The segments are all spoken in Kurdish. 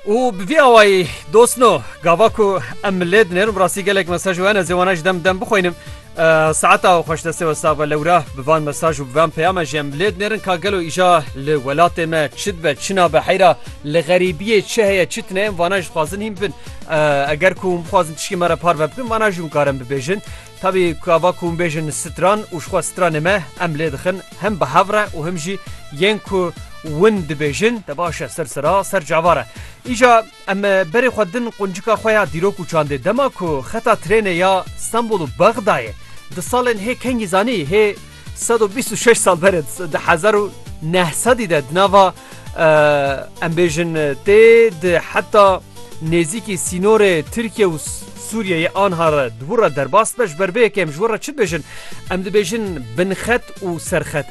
û bi vî awayî dostno gava ku em milê dinêrin bi rastî gelek mesaj û hene zêwana ji dem dem bixwînim saeta xweş destê we save lewra bi van mesaj û bi van peyame jî em milê dinêrin ka gelo îja li welatê me çi dibe çi nabe heyra li xerîbiyê çi heye çi tune em vana ji dixwazin hîn bin eger ku hûn bixwazin tiştê me re parve bikin vana jî hûn karin bibêjin Tevî kava ku hûn bêjin stran û jixwe stranê me em lê dixin him bi hev re û him jî yên ku win dibêjin te baş e ser sira ser cava re. Îja em berê xwe din quncika xwe ya dîrok û çandê dema ku xeta trênê ya Stenbol û Bexdayê di salên hê kengî zanî hê Sed û bîst û şeş sal berê di hezar û neh sedî de di nava em bêjin tê di heta nêzîkî sînorê Tirkiye û Sûriyeyê anha re di wir re derbas be ji ber vê yekê em ji wir re çi dibêjin? Em dibêjin binxet û serxet.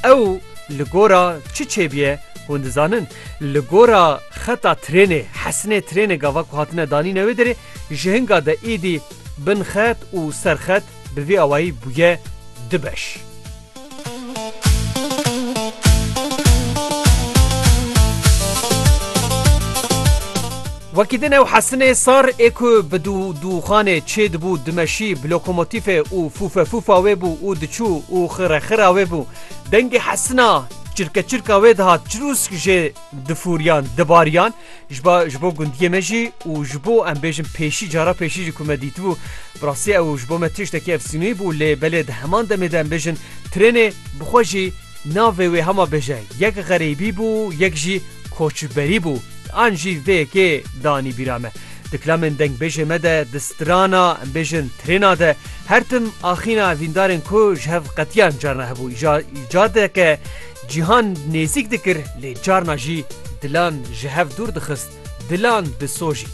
Ew li gora çi çêbiye hûn dizanin? Li gora xeta trênê, hesinê trênê gava ku hatine danîne wê derê ji hinga de êdî binxet û serxet bi vî awayî bûye du beş. Wekî din ew hesinê sar ê ku bi dû dûxanê çê dibû dimeşî bi lokomotîfê û fûfefûfa wê bû û diçû û xirexira wê bû. Dengê hesina çirkeçirka wê dihat çirûsk jê difûriyan dibariyan Ji ba ji bo gundiyê me jî û ji bo em bêjin pêşî cara pêşî jî ku me dîtibû bi rastî ew ji bo me tiştekî efsîneyî bû lê belê di heman demê de em bêjin trênê bi xwe jî navê wê hema bêje yek xerêbî bû yek jî koçberî bû an jî vê yekê danî bîra me di kilamên dengbêjê me de di strana em bêjin trêna de her tim axîna evîndarên ku ji hev qetiyan carna hebû îcadeke Cîhan nêzîk dikir lê carna jî dilan ji hev dûr dixist, dilan disojît.